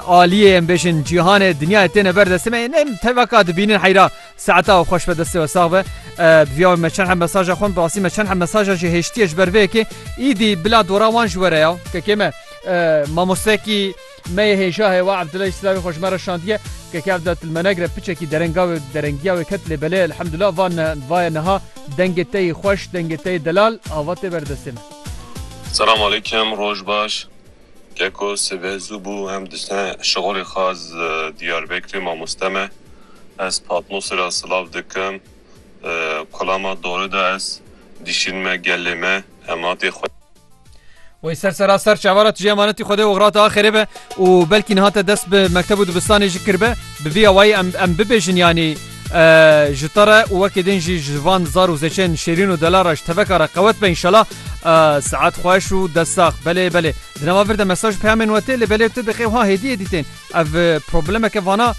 aliyê em bêjin cîhanê dinyayê têne ber destê me yê nem tevaka dibînin heyra saeta û xweş be destê we sax be viya me çend hem mesaja xwe rastî me çend hem mesaja jî hêştiye ji ber vê yekê îdî bila dora wan ji were ya kekê me mamostekî me yê hêja heye wa Abdullah Slavî xwe ji me re şandiye kekê Abdullah Tilmenegre piçekî derenga wê derengiya wê ket lê belê elhamdullah van vaye niha dengê te yê xweş dengê te yê delal ava tê ber destê me Selam aleyküm, roj baş. Ke ku sive zû bû em diçine şixulê xwe ez Diyarbekirê mamoste me ez Patmosê re silav dikim kulama dori de ez dîşîn me gelê me hematê xwe. Wey ser sera ser çavara tije emanetî xwedê oxrate axerê be û belkî niha te dest bi mekteb û dibistanê jî kirbe bi vî awayî em em bibêjin yanî Ji te re û wekî din jî ji van zar û zêçeyên şêrîn û delal re ji teveka re qewet be înşela. Saet xweş û dest sax. Belê belê. Di nava vir de mesaj peyamên we tê lê belê tu dixê wiha hêdî hêdî tên. Ev problemeke vana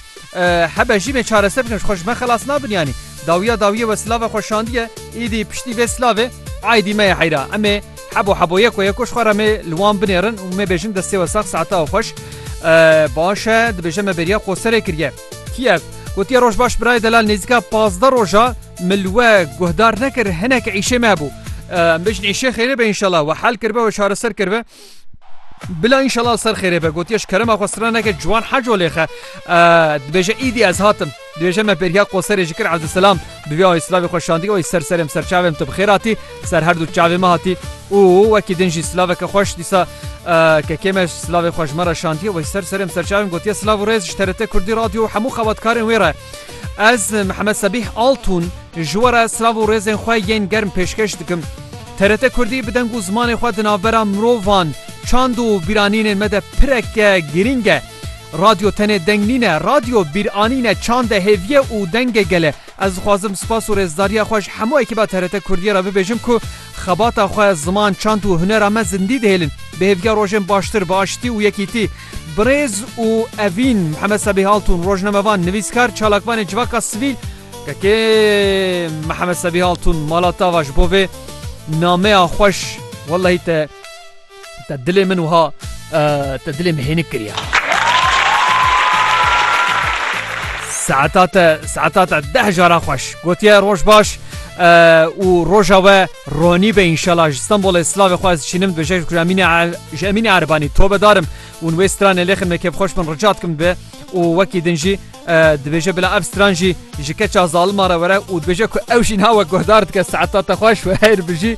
hebe jî bên çareser bikin ji xwe ji me xelas nabin yanî. Dawiya dawiyê we silave xwe şandiye îdî piştî vê silavê aîdî me ye heyra. Em ê hebo hebo yeko yeko ji xwe re mê li wan binêrin û mê bêjin destê we sax saeta we xweş. Baş e dibêje me bêriya qoserê kiriye. Kîev, gotiye Rojbaş birayê delal nêzîka pazdeh roja mil we guhdar nekir hinek îşê me bû. Em bêjin îşê xêrê be înşela we hel kiribe we çareser kiribe. Bila înşela ser xêrê be gotiye ji kerema xwe sira neke ciwan heco lêxe. Dibêje îdî ez hatim. Dibêje me bêriya qoserê ji kir Evdûselam bi vê ayê silavê xwe şandî oy ser serê em serçavê em tu bi xêr hatî. Ser her du çavê me hatî û wekî din jî silaveke xweş dîsa kekê me silavê xwe ji me re şandiye wê ser serê em serçavên gotiye silav û rêz ji TRT Kurdî Radyo û hemû xebatkarên wê re. Ez Mihemed Sebîh Altûn ji we re silav û rêzên xwe yên germ pêşkeş dikim. TRT Kurdî bi deng û zimanê xwe di navbera mirovan, çand û bîranînên me de pireke girîng e. Radyo tenê deng nîne, radyo bîranîne, çand e, hêviye û deng e gele. Ez dixwazim spas û rêzdariya xwe ji hemû ekîba TRT Kurdiyê re bibêjim ku xebata xwe, ziman, çand û hunera me zindî dihêlin. Bi hêviya rojên baştir, bi aştî û yekîtî. Bi rêz û evîn Mihemed Sebîh Altûn, rojnamevan, nivîskar, çalakvanên civaka sivîl, Kekê Mihemed Sebîh Altûn, Mala Tava ji bo vê nameya xweş wellehî te Te dilê min wiha te dilê min hênik kiriye. Saeta te saeta te deh jara xweş gotiye roj baş û roja we ronî be înşala ji Stenbolê slavê xwe ez çînim bi jej kuramînê ji emînê Erbanî to bedarim û wê stranê lêxin me kêf xweş min rica dikim be û wekî din jî dibêje bila ev stran jî ji keça zalima re were û dibêje ku ew jî nawe guhdar dike saeta te xweş we heyr bijî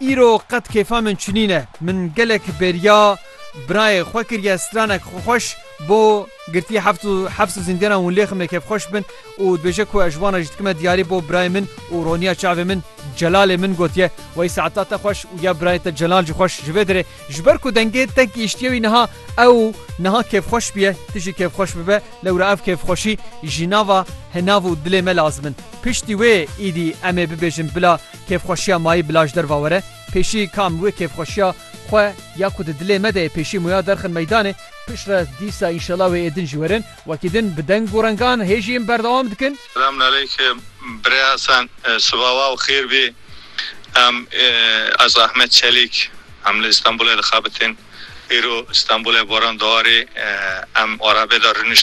Îro qet kêfa min çinî ne. Min gelek bêriya birayê xwe kiriye stranek xwe xweş bo girtiye heft û heft û zîndiyanan hûn lêxim lê kêfxweş bin û dibêje ku ez ji wan re jî dikime diyarî bo birayê min û roniya çavê min Celalê min gotiye wey saeta te xweş û ya birayê te Celal jî xweş ji vê derê ji ber ku dengê te gihiştiye wî niha ew niha kêfxweş biye tu jî kêfxweş bibe lewra ev kêfxweşî jî nava henav û dilê me lazim in piştî wê îdî em ê bibêjin bila Kêfxweşiya mayî bila ji derva were, pêşî ka em wê kêfxweşiya xwe ya ku di dilê me de ye pêşî muya derxin meydanê, piştre dîsa înşela wê ê din jî werin, wekî din bi deng û rengan hê jî em berdewam dikin. Selamun aleyk Birê Hesen siva wa û xêr bî em ez Ahmet Çelîk em li Îstanbûlê dixebitin îro Îstanbûlê boran diwarê em arabê de rûnişt.